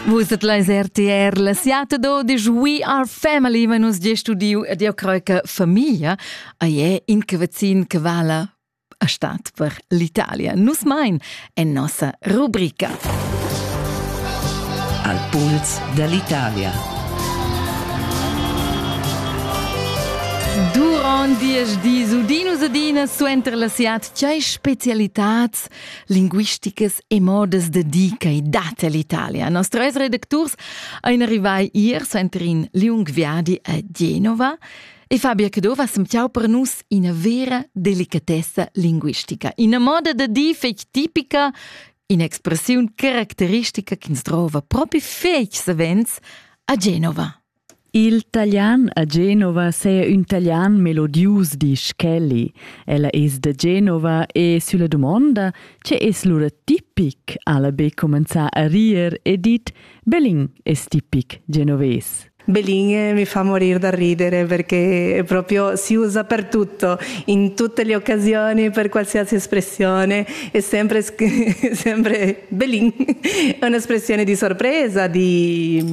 Vus et leis RTR, la siata d'odisch We Are Family, ma nus ge studiu ed io crei che famiglia ei è in che vecin che vala a stat per l'Italia. Nus mein en nossa rubrica. Al puls dall'Italia. Durant diesch dis udinus adina suenter la siat tgei specialitats linguisticas e modas da dir che dat l'Italia. Nostres redacturs ein arrivai ier center in liung viadi a Genova e Fabia Cadova semtiau per nus ina vera delicatessa linguistica, ina moda da dir fetg tipica, un'expressiun caracteristica che ins trova propi fetg savens a Genova. Il talian a Genova saja ün talian melodius, disch Kelly. Ella es da Genova e sülla dumonda, che es lura tipic, ha'la be cumanzà a rir e dit Belin es tipic genovés. Belin eh, mi fa morire da ridere perché proprio si usa per tutto, in tutte le occasioni, per qualsiasi espressione, è sempre, sempre Belin, è un'espressione di sorpresa, di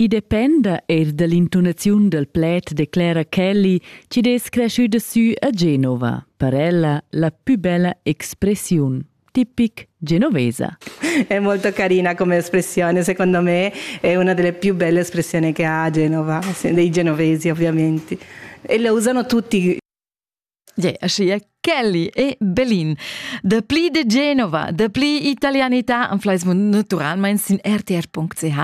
I dependa eir da l'intunaziun dal pled, declera Kelly, chi'd es creschüda sü a Genova, per ella la pü bella expressiun, tipic genovesa. È molto carina come espressione, secondo me è una delle più belle espressioni che ha Genova, dei genovesi ovviamente. E la usano tutti Aschia Kelly e Belin. Dapli de Genova, dapli italianità am fleis naturalmein sin rtr.ch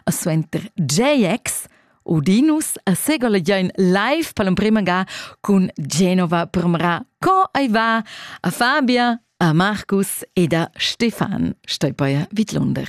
a suenter JX Udinus a segola join live per l'emprima ga cun Genova premra co ai va a Fabia, a Markus ed a Stefan. Stoi poi vid Lunder.